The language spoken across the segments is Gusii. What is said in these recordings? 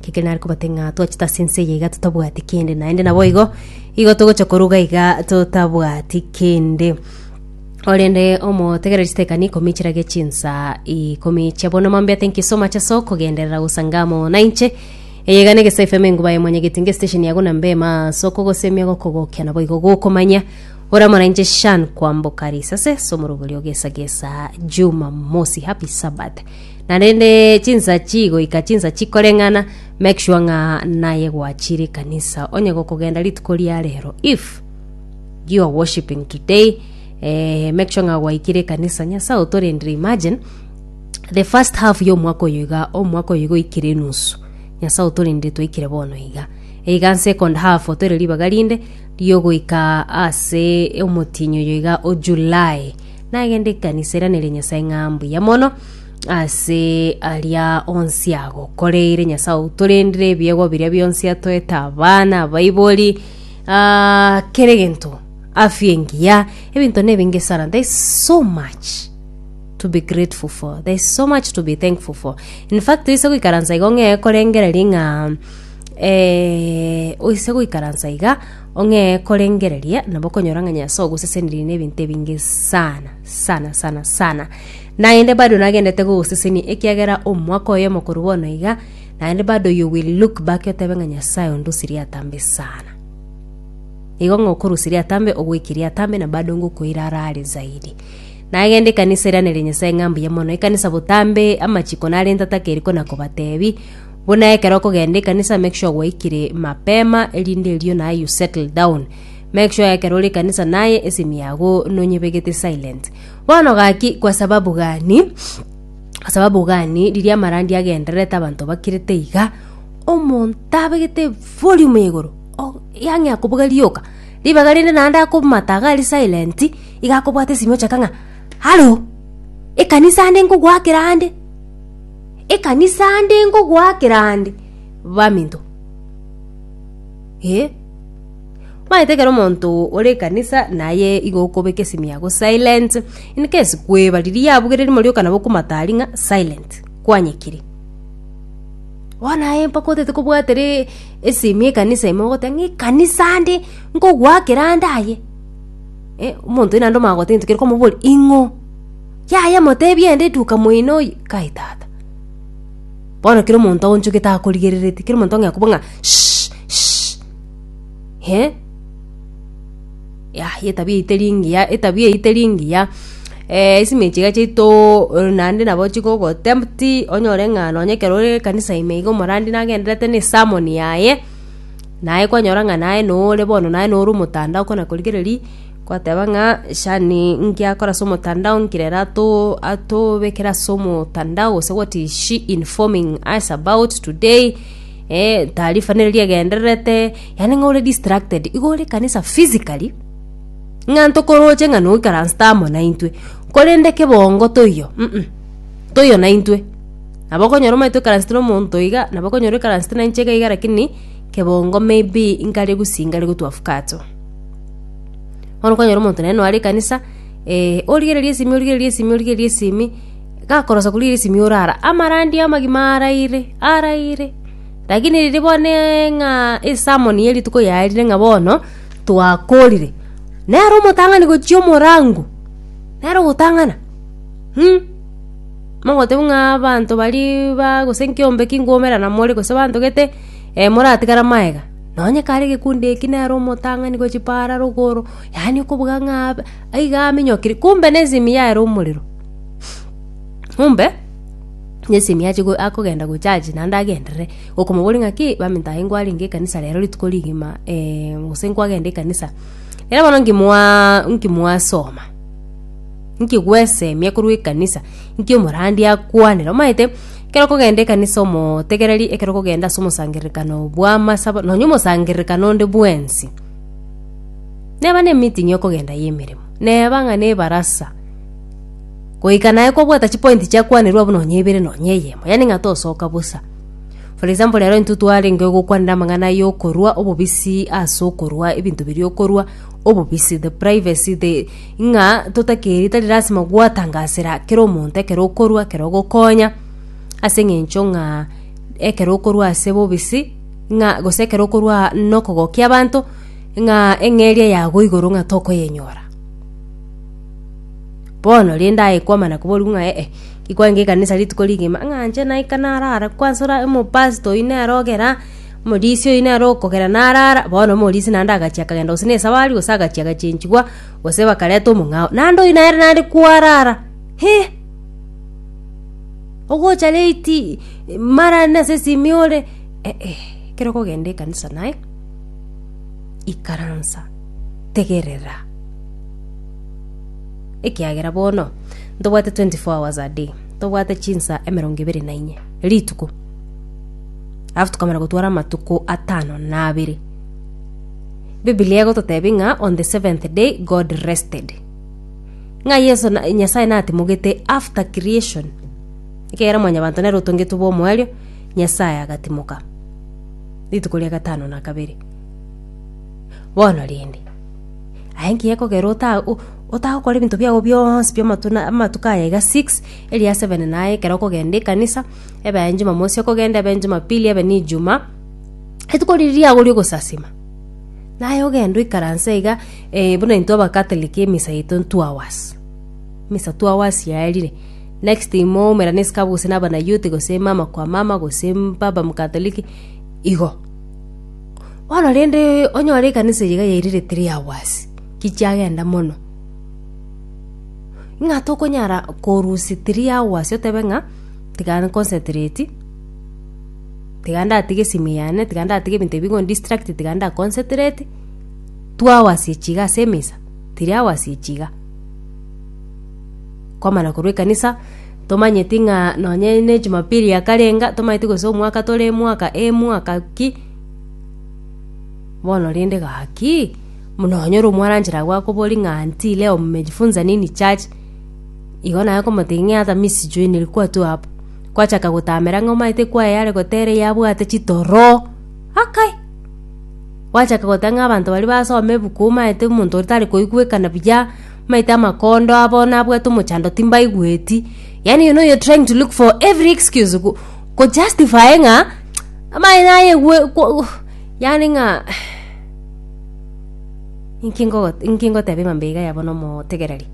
Ekekeri nare kobate ng'a twachete ase ense eye iga totabwati kende, naende naboigo igo togocha koruga iga totabwati kende. Korende omotegereri chitekani ikomi chirage chinsa ikomi chia bono mambete nkisoma ase so kogenderera gosanga amo nainche. Eye iga negesa FM enguba ya mwanyageti ngesitesheni ya guna mbema ase okogosemia gokogokia naboigo gokomanya ore amo nainche Shan kwamboka risase ase omoroberio ogesagesa Jumamosi. Happy Sabbath. Naende chinsachi goika chinsachi koreng'ana make sure ng'a naye gwachire ekanisa onye gokogenda rituko ria rero if you are worshiping today eh, make sure ng'a gwaikire ekanisa nyasaye otorendire imagine the first half ya omwaka oyo iga omwaka oyo iga oikire enusu nyasaye otorendire twaikire bono iga iga second half otoire ribaga rinde riogoika ase omotienyi oyo iga o july nagende ekanisa eranere nyasae ng'a mbuya mono ase aria onsi agokoreire nyasae outorendire ebiegwa biria bionsi atoete abana abaibori ah, kere gento afya engiya ebinto nebinge sana there is so much to be grateful for there is so much to be thankful for in fact oise goikaransa igo ng'ee korengereria ng'a eh, oise goikaransa iga Ong'ee korengereria, nabo okonyora ng'a Nyasae ogoseseneria nebinto ebinge sana sana sana sana. Naende bado nagendete gogosesenia ekiagera omwaka oyomo korwa bono iga, naende bado you will look back otebe ng'a Nyasae ondusirie atambe sana. Igo ng'a okorusirie atambe ogwekirie atambe na bado ngokoira arare zaidi. Nagenda ekanisa eraneria Nyasae ng'a mbuya mono, ekanisa botambe amachiko narente atakeriko na kobatebi, Buna ekero okogenda ekanisa make sure gwaikire mapema erinde erio naye you settle down. Make sure ekero ore ekanisa naye esimi yago nonyebegete silent. Bono gaki kwa sababu gani? Kwa sababu gani riria amarandi agendererete abanto bakirete iga omonto abegete volume ya igoro o- yang'e akobuga rioka ribaga rinde naende akomata iga ari silent iga akobwata esimi ochaka ng'a halo ekanisa ande nkogoakera ande. Ekanisa ande ngogoakera ande, baminto. Eh. Omanyete ekero omonto ore ekanisa naye igo okobeka esimi yago silent, in case kweba riria yabugeire rimo rioka nabo okomata aria ng'a silent, kwanyekire. Bono naye mpaka otagete kobwatere esimi ekanisa ime ogoteba ng'a ekanisa ande nkogoakera ande aye. Eh, omonto oyio naende omanya gotebi ntokerwa komoboria ing'o? Yaya, moteebie aende etuka moino oye, Kai tata. Bono kera omonto aonchogete akorigerereti, kera omonto ong'ea kobua ng'a shh shh eh. Yaya etabia eyio teri engiya, etabia eyio teri engiya, eh isime echi iga chiaito naende nabo chigogotempt onyore ng'a nonye ekero ore ekanisa ime iga omorandi nagendererete na esermon yaye, naye kwanyora ng'a naye nore bono naye nore omotandao okona korigereria. Gwateba ng'a, Shani ngiakore ase omotandao nkire ere atobekere ase omotandao gose what is she informing us about today taarifa nere riegendererete yaani ng'a ore distracted igo ore ekanisa physically ng'a ntokoroche ng'a noikaransete amo naintwe korende kebongo toiyo toiyo naintwe nabo okonyora omanyete oikaransete na omonto iga nabo okonyora oikaransete nainche iga iga lakini kebongo maybe nkare gusii nkare gotwa after. Bono okonyora omonto nonye noare ekanisa, eh, origereria esimi origereria esimi origereria esimi, gakorosa korigereria esimi orara, amarandia amagima araire, araire. Rakini riria boneeee ng'a esermon ya rituko yaarire ng'a bono, twakorire, nere omotang'ani gochia omorango, nere ogotang'ana um, mogoteba ng'aa abanto baria baa gose nkiombe kingumera namore gose banto gete, moratigara magega. Nonye kare egekundu eki nere omotang'ani gwe chipaara rogoro, yaani okobuga ng'a abe aiga aminyokire, kumbe nesemi yaye omorero. Kumbe nesemi ache akogenda gochaji naende agenderere okomoboria ng'a ki, baminto aye nkwarenge ekanisa rero rituko rigima gose nkwagenda ekanisa. Ekero bono nkimwa nkimwasoma, nkigwesemia korwa ekanisa, nki omorandi akwanera, omanyete. Ekero okogenda ekanisa omotegereri, ekero okogenda ase omosangererekano bw'amasabo, nonya omosangererekano onde bwensi, neba nemeeting y'okogenda y'emeremo, neba ng'a nebarasa, goika naye kobwata chipointi chiakwanerwa abwo nonya ibere nonya eyemo, yaani ng'a tosoka bosa. For example rero intwe twarenge gokwanera amang'ana ya okorwa obobisi ase okorwa ebinto biria okorwa obobisi, the privacy the. ng'a totakeri tari lasima gwatangasera kera omonto ekero okorua ekero ogokonya, ase eng'encho ng'a ekero okorua ase bobisi ng'a gose ekero okorua nokogokia abanto ng'a eng'eria yago igoro ng'a tokoyenyora. Bono rende aye kwamana koboria ng'a eh ki kwange ekanisa rituko rigima ng'a inche naika narara kwansa ore omopastor oyio nere ogera. Omorisia oino are okogera naraara, bono omorisia naende agachia akagenda gose nesabari, gose agachia agachenchigwa, gose bakareta omong'ao. Naende oino nere naende kwarara, he! Ogocha late, mara aria nase esimi ore, eh-eh, ekero okogenda ekanisa naye, ikaransa, tegerera, ekiagera bono ntobwate twenty four hours a day, ntobwate chinsa emerongo ebere na inye rituko. Alafu tukamara gotwara amatuko atano na abere. Biblia egototebia ng'a on the seventh day God rested. Ng'a Yeso na- Nyasaye natimogete after creation. Ekegera mwanyabanto nere otongetwe bw'omoerio, Nyasaye agatimoka. Rituko ria gatano na kabere. Bono rende, aye nki gekogera ota- o- otagokora ebinto biago bionsi bi'amatuna- amatuko aya iga six, eria seven naye ekero okogenda ekanisa, ebe aye Jumamosi, okogenda ebe Jumapili, ebe n'Ijuma, rituko riria riago ri'ogosasima. Naye ogenda oikaranse iga, eh, buna intwe Abakatoliki emisa yaito n'two hours. Misa two hours yaerire. Next thing moumera n'esiko abwo gose naba na youth gose mama kwa mama gose baba Mkatoliki, igo. Bono rende onyore ekanisa eye iga yairire three hours, ki chiagenda mono. Ng'a tokonyara korusia three hours otebe ng'a. tiga nconcentrate, tiga ndatige esimu yane, tiga ndatige ebinto ebi bigondistracti, tiga ndaconcentrate, two hours echi iga ase emisa, three hours echi iga. Kwamana korwa ekanisa, tomanyeti ng'a nonye ne ejumapili yakarenga, tomanyeti gose omwaka tore emwaka emwaka ki, bono rende gaki, buna nonyore omwaranchera agwo akobori ng'a aunty leo mmejifunza nini church. Igo naye akomotegia ng'a Arthur Miss-Joined kwatwo abwo. Kwachaka gotamera ng'a omanyete kwaye are gotera eye abwate chitoro. Akai! Gwachaka goteba ng'a abanto baria basoma ebuku omanyete omonto oria tari koigwekana buya, omanyete amakondo abo nabwate omochando timbaigweti. Yaani you know you're trying to look for every excuse go go justify ng'a amaye nayegwe ko yaani ng'a inki ngogo inki ngoteba ebabe iga yaba na omotegereri.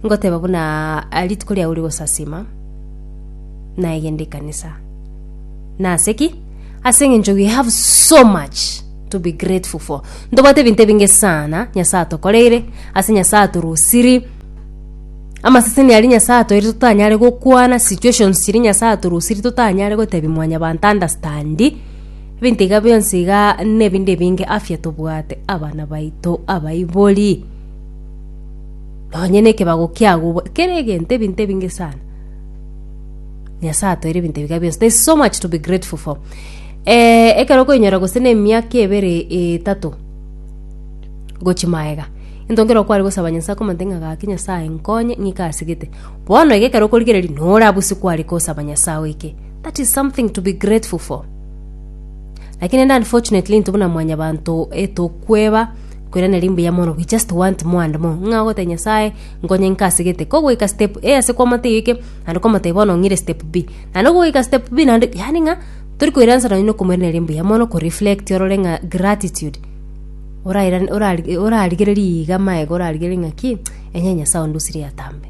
Ngoteba buna rituko riao rigosasima, nayegende ekanisa. Na ase ki? Ase engencho we have so much to be grateful for. Ntobwate ebinto ebinge sana Nyasae atokoreire, ase Nyasae atorusiri, amaseseni aria Nyasae atoeire totanyare gokwana, situations chiria Nyasae atorusiri totanyare gotebi mwanyabanto understandi, ebinto iga bionsi iga na ebinto ebinge, afya tobwate, abana baito, abaibori, Nonye nekebago kiagobua kere egento ebinto ebinge sana. Nyasaye atoire ebinto ebiga bionsi. There's so much to be grateful for. Eh, ekero okoinyora gose na emiaka ebere etato gochi maega. Into nkero kwari gosaba Nyasaye komante ng'a gaki Nyasaye nkonye ng'ika asigete. Bono iga ekero okorigereria nore abusi kwari kosaba Nyasaye oike. That is something to be grateful for. Lakini rende unfortunately intwe buna mwanyabanto etokweba Korende nari mbuya mono we just want more and more, ng'a ogotebia Nyasae, nkonye inke ase gete. Ko ogoika step A ase kwamate eyo eke, naende kwamotebia bono ong'ire step B. Naende ogoika step B naende, yaani ng'a tori koiransana nonya na okomoiraneria mbuya mono, koreflect orore ng'a gratitude, orairane orari orarigererie iga amaega orarigererie ng'aki, onye Nyasae ondusirie atambe.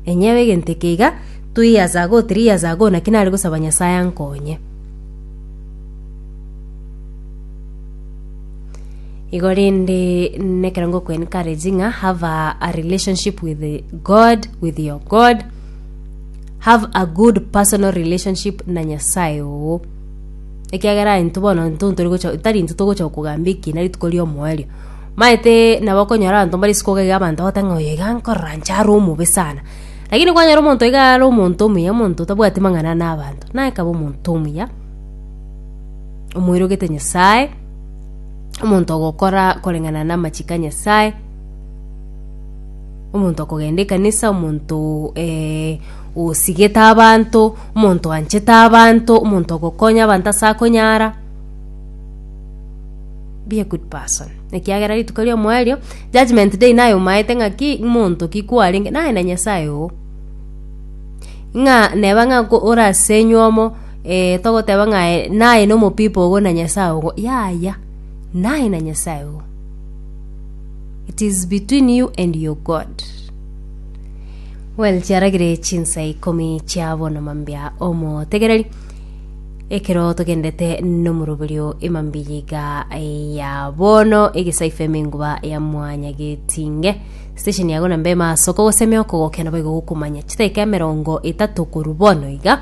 Enyewe egento eke iga, two years ago, three years ago, naki nare gosaba Nyasae ankonye. Igo rende nekero ngokwee encourage ng'a have a, a relationship with God, with your God. Have a good personal relationship na Nyasaye oo. Ekiagera intwe bono intwe ntori gocha tari intwe togocha kogamba ekina rituko ria omoerio. Maete nabo okonyora abanto mbare isiko iga abanto bagote ng'a oyo iga nkorora inche are omobe sana. Lakini kwanyora omonto iga are omonto omuya omonto otabwati mang'ana na abanto, naye kaba omonto omuya, omoirogete Nyasaye, omonto ogokora koreng'ana namachiko a Nyasaye, omonto okogenda ekanisa, omonto osigete abanto, omonto oanchete abanto, omonto ogokonya abanto ase akonyara, be a good person ekiagera rituko ri'omoerio judgement day naye omaete ng'aki monto ki kwarenge naye na Nyasaye oo. Ng'a neba ng'a orasenywe omo. Ee, togoteba ng'a aye naye nomopipo ogo na Nyasae ogo. Yaya, naye na Nyasae ogo. It is between you and your God. Well, chiaragire chinsa ikomi chia bono mambia omotegereri ekero togendete nomuroberio emambi yiga ya bono egesaifa emenguba ya mwanya getinge station yago na mbema asoko gosemea okogokena baigo gokumanya chitaika emerongo etato koru bono iga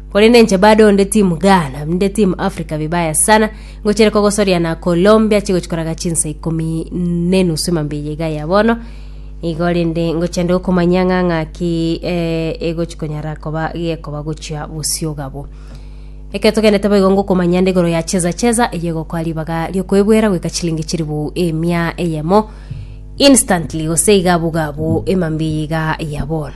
Korende inche bado onde team Ghana, ninde team Africa vibaya sana, ngochire kogosoria na Colombia chigochi koraga chinsa ikomi nenusu emambia eye iga ya bono, igo rende ngochende gokomanyia ng'a ng'aki eh, egochi konyara koba gekoba gochia bosio gabo. Ekero togenderete boigo ngokomanyia nde igoro ya cheza cheza eye egokoa ribaga riokoebwera goika chilingi chilifu emia eyemo instantly gose igabu gabu emambia eye iga ya bono.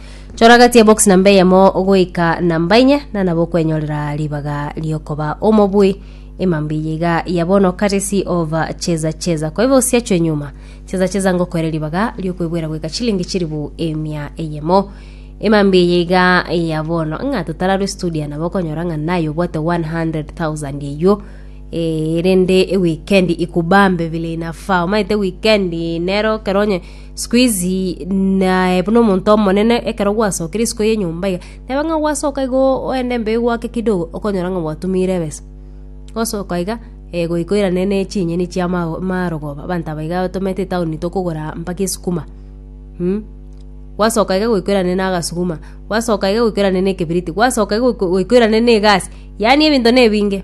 Chora gati ya box namba eyemo goika namba enye na nabo okwenyorera ribaga riokoba omobui emambia iga ya bono courtesy of cheza cheza kwa hivyo usiachwe nyuma cheza cheza ngokwere ribaga riokwebwera goika chilingi chiribu emia eyemo emambia eye iga ya bono ng'a totararwe studio nabo okonyora ng'a naye obwate 100000 eywo Eh, rende weekend ikubambe vile inafaa omaete weekend nero keronye Sikuizi naye buna omonto omonene, ekero gwasokire isiko y'enyomba iga, teba ng'a gwasoka iga oende mbeo gwake kidogo, okonyora ng'a gwatumiire ebesa. Gosoka iga, goika oirane ne chinyeni chia amarogoba, abanto aba iga batomete etaoni tokogora mpaka esukuma. Gwasoka iga goika oirane na agasuguma, gwasoka iga goika oirane na ekebiriti, gwasoka iga goika oirane na egasi, yaani ebinto na ebinge.